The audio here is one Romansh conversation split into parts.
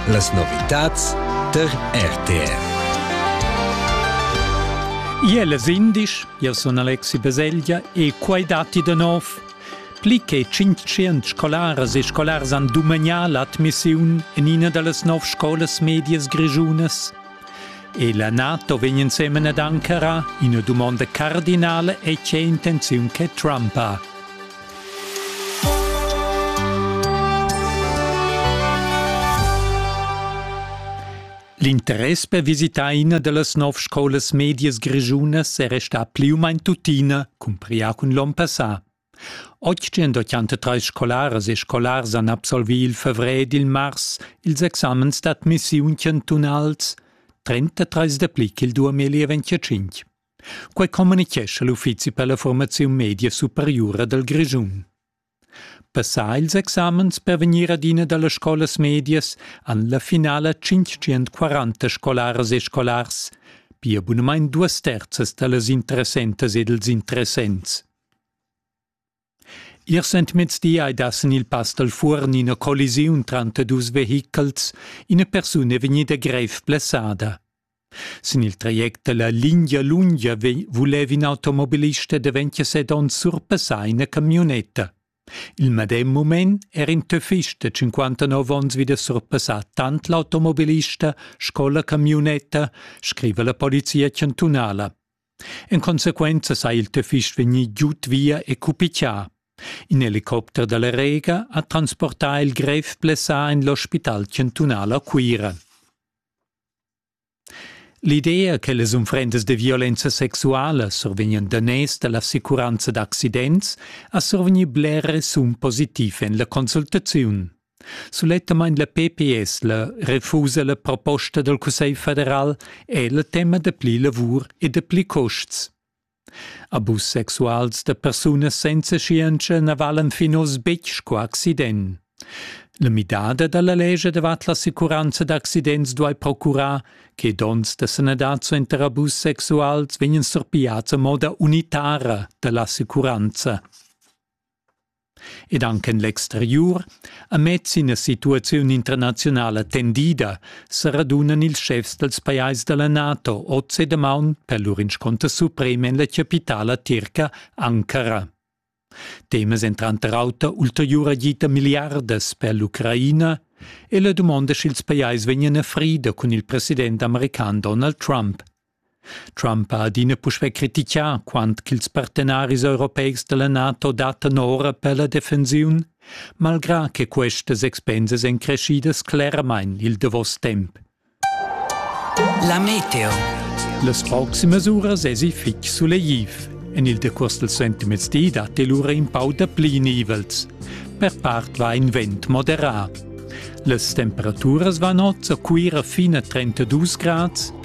Las novitads tar RTR. Iel es indisch, io sun Alexi Baselgia e quai datti da nov. Pli che 500 scolaras e scolars han dumagna l'admissiun in ina da las nov scolas medias grischunas. E la NATO vegn insemen ad Ankara ina dumonda cardinale e c'è intenziun che Trump ha. L'interess per visitar ina dallas nov scolas medias grischunas era stà pli u main tuttina, cumpria cun l'onn passà. 883 scolaras e scolars han absolvì il favrer ed il mars ils examens d'admissiun chantunals, 33 dapli ch'il 2025. Quei communichescha l'uffizi per la formaziun media superiura dal Grischun. Passà ils examens per vegnir ad ina dallas scolas medias han la finala 540 scolaras e scolars, pia bunamein duas terzas dallas interessentas ed ils interessents. Ir sentmezdi ei da sin il Pass dal Fuorn ina collisiun tranter dus vehichels. Ina persuna è vegnida grev blessada. Sin il traject dalla lingia lunga vulev in automobilist da 27 onns surpassar ina camionetta. Il medem mument era in töffist de 59 onns wieder surpassà tant l'automobilista sco la camionetta, scrive la polizia chantunala. En consequenza sa il töfist vegnir giud via e cupichià. In helicopter dalla Rega ha transportà il grev blessà en l'ospital chantunal a Cuira. L'idea che las unfrendas de violenza sexuala survegnan daners dall'assicuranza d'accidents ha survegni bler resun positiv en la consultaziun. Sulettamain la PPS la refusa la proposta dal Cussegl federal è la tema da pli lavur e da pli custs. Abus sexuals da persunas senza scienza na valan fin oz betg sco accident. La midada da la legge davart l'assicuranza d'accidents duai procurar che donns da sanadad suenter abus sexuals vegnan surpigliads a moda unitara da l'assicuranza. Ed anche l'exteriur ha mez ina situaziun internazionala tendida, sa radunan ils schefs dals pajais da la NATO oz e damaun per lur inscunter suprem en la chapitala tirca Ankara. Temas èn tranter auter ulteriura gita milliardas per l'Ucraina e la dumonda sch'ils pajais vegnan a frida cun il president american Donald Trump. Trump ha adina puspè crititgà quant ch'ils partenaris europeics da la NATO dattan ora per la defensiun, malgrà che questas expensas èn creschidas cleramain il davos temp. La meteo. Las proximas uras èsi fitg sulegliv. En il decurs dal sentimezdi datti lura in pau dapli nivels. Per part va in vent moderà. Las temperaturas van oz a Cuira fin a 32 grads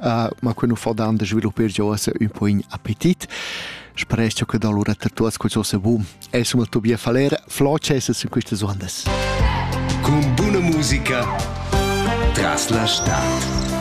uh, ma quei nu fa dan de sviluppar giò esse un po' in appetit. Sprecho che da lura ter tuas questo se boom. È suma tu bia faler, floce se in queste suandes. Con buona musica tras la stad.